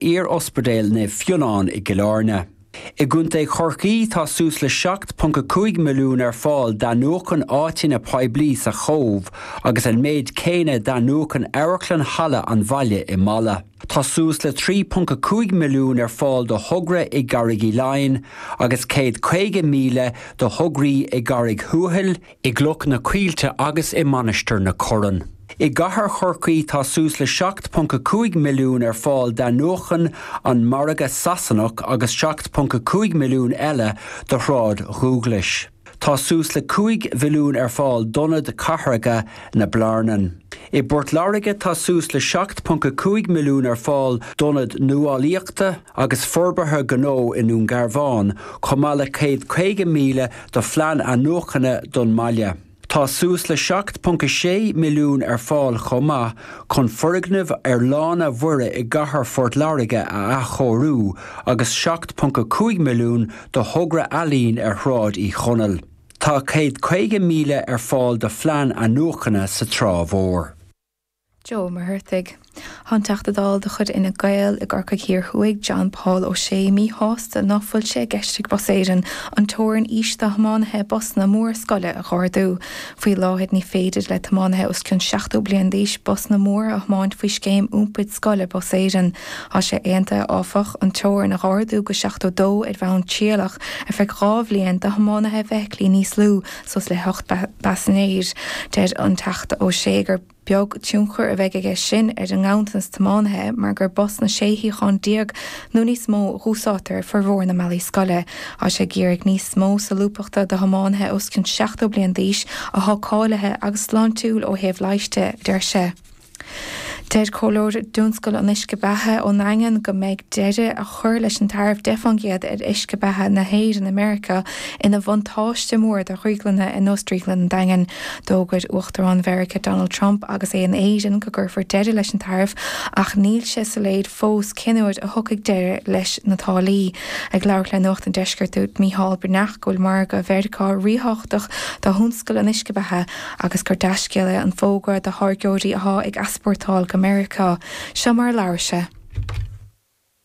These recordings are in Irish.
Iar-Ospidéal Naomh Fionán i gCill Airne. I gContae Chorcaí tá suas le 7.5 milliún ar fáil d'athnuachan áiteanna poiblí sa Chóbh agus an méid céanna d'athnuachan Amharclann Halla an Bhaile i Mala. Tá suas le 3.5 milliún ar fáil do thogra i gCarraig Uí Leighin agus 150,000 do thograí i gCarraig Thuathail, I gCloch na Coillte agus i Mainistir na Corann. I gCathair Chorcaí tá suas le 7.5 milliún ar fáil d'athnuachan an margadh Sasanach agus 7.5 milliún eile do shráid Dhúghlais. Tá suas le 5 mhilliún ar fáil d'ionad cathracha na Blarnan. I bPort Láirge tá suas le 7.5 milliún ar fáil d'ionad nuálaíochta, agus forbartha gnó i nDún Garbhán, chomh maith le 150,000 do phlean athnuachana don mbaile. Tá suas le 7.6 milliún ar fáil chomh maith chun foirgneamh ar Lána Mhuire i gCathair Phort Láirge a athchóiriú agus 7.5 milliún do thogra ealaíon ar Shráid Uí Chonaill. Tá 150,000 ar fáil do phlean athnuachana sa Trá Mhór. Joe Mag Raollaigh. Tá an Teachta Dála de chuid Fhine Gael i gCorcaigh Thiar Thuaidh, John Paul O'Shea, míshásta ná fuil sé i gceist ag Bus Éireann an teorainn aois do thiománaithe busanna móra scoile a dh'ardú. Faoi láthair ní féidir le tiománaithe os cionn 70 bliain d'aois busanna móra a thiomáint faoi scéim iompair scoile Bus Éireann. Tá sé aontaithe áfach an teorainn a dh'ardú go 72 ar bhonn trialach ar feadh dhá bhliain do thiománaithe feithiclí níos lú suas le hocht bpaisinéir. Deir an Teachta O'Shea gur beag tionchar a bheidh aige sin ar an nganntanas tiománaithe mar gur busanna sé shuíochán déag nó níos mó a dhúsáidtear ar fhormhór na mbealaí scoile. Tá sé ag iarraidh níos mó solúbthachta do thiománaithe os cionn 70 bliain d'aois atá cáilithe agus sláintiúil ó thaobh leighis de, a deir sé. Deir comhairleoir i dtionscal an uisce beatha ón nDaingean go mbeadh deireadh a chur leis an taraif 10 fán gcéad ar uisce beatha na hÉireann i Meiriceá ina bhuntáiste mór do dhrioglanna ar nós Drioglann an Daingin. D'fhógair Uachtarán Mheiriceá Donald Trump agus é in Éirinn go gcuirfear deireadh leis an taraif ach níl sé soiléir fós cén uair a thiocfaidh deireadh leis na táillí. Ag labhairt le Nuacht an Deiscirt dúirt Micheál Breathnach go bhfuil margadh Mheiriceá ríthábhachtach do thionscal an uisce beatha, agus gur dea-scéal é an fógra do tháirgeoirí athá ag easpórtáil go Meiriceá. Seo mar a labhair sé.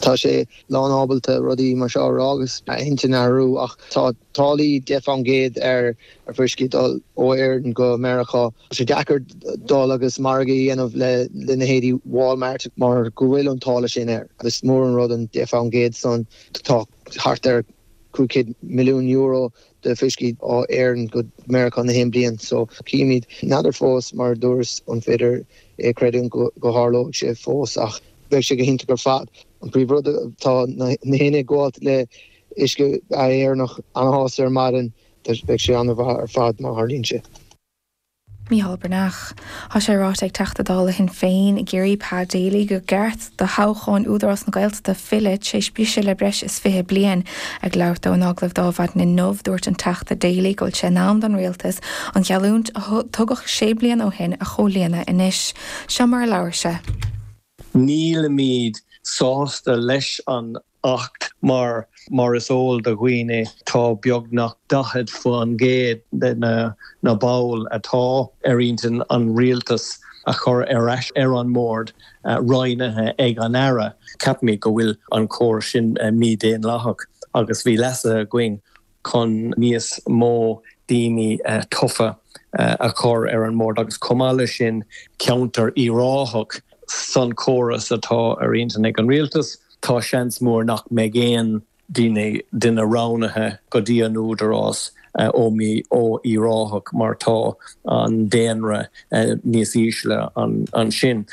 Tá sé lánábalta rudaí mar seo a rá agus a intinn a athrú ach tá táillí deich fán gcéad ar fhuisce ag dul ó Éirinn go Meiriceá. Tá sé deacair dul agus margadh a dhéanamh le leithéidí Walmart mar go bhfuil an táille sin air. Is mór an rud an deich fán gcéad san. Tá thart ar cúig chéad milliún euro de fuiscí ó Éirinn go Meiriceá gach aon bhliain so chímid n'fheadar fós mar a dúrt an féidir é a chreidiúint go dtarlóidh sé fós ach beidh sé go hiontach ar fad. An príomh rud tá gach éinne atá ag gabháilt le uisce beatha Éireannach ana shásta ar maidin beidh sé ana mhaith ar fad má tharlaíonn sé. Mícheál Breathnach. Tá sé ráite ag Teachta Dála Shinn Féin i gCiarraí, Pa Daly, gur ceart do thoghcháin Údarás na Gaeltachta filleadh tar éis briseadh le breis is 20 bliain. Ag labhairt dó in agallamh ar maidin inniu, dúirt an Teachta Daly go bhfuil sé in am don Rialtas an gheallúint a tugadh sé bliana ó shin a chomhlíonadh anois. Seo mar a labhair sé. Nílimid sásta leis an Acht mar, mar is eol do dhaoine tá beagnach 40% de na baill atá ar intinn an rialtas a chur ar ais ar an mbord roghnaithe ag an Aire. Ceapaimid go bhfuil an córas sin mídhaonlathach agus bhí leasuithe againn chun níos mó daoine tofa a chur ar an mbord agus chomh maith leis sin ceantar Uíbh Ráthach san chóras atá ar intinn ag an rialtas, tá seans mór nach mbeidh aon duine roghnaithe go dtí an Údarás ó Uíbh Ráthach mar tá an daonra níos ísle ansin.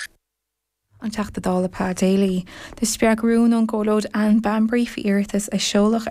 An Teachta Dála Pa Daly. Do spreag rún ón gComhairleoir Anne Bambury faoi iarratas a seoladh ar.